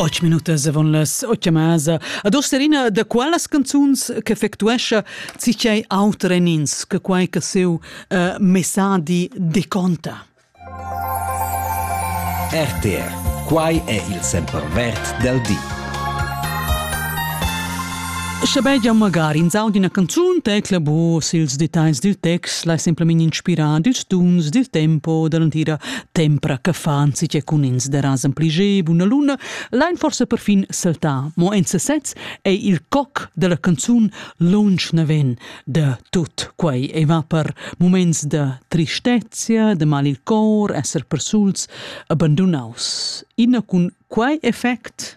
Otg minutas avon las otg masa. Ad Osterina, da qualas canzuns che effectuescha cicei auter en ins che quai che seu uh, messadi deconta? RTR. Quai è il sempervert del di. Schabegia magari in sau d'una canzun tecla bus ils detalls dil text, lai semplamein inspirar dils tuns, dil tempo, dall'entira Tempra che fan si che cun ins derasen pli ge buna luna, lein forse perfin saltar, mo en sesez è il coc della canzun lunsch neven de tut quei e va per moments de tristezia, de mal il cor, esser persuls, abandonaus. Ina cun quei effect?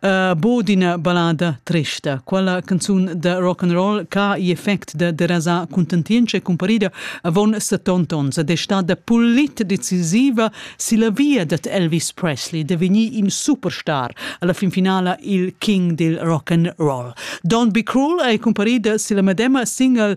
uh, bod ina ballada trista. Quella canzun da rock and roll che effect da derasa contentienza e comparida avon 70 ons ed è stata pulit decisiva si la via dat Elvis Presley de venir in superstar alla fin finala il king dil rock and roll. Don't Be Cruel è comparida si la medema single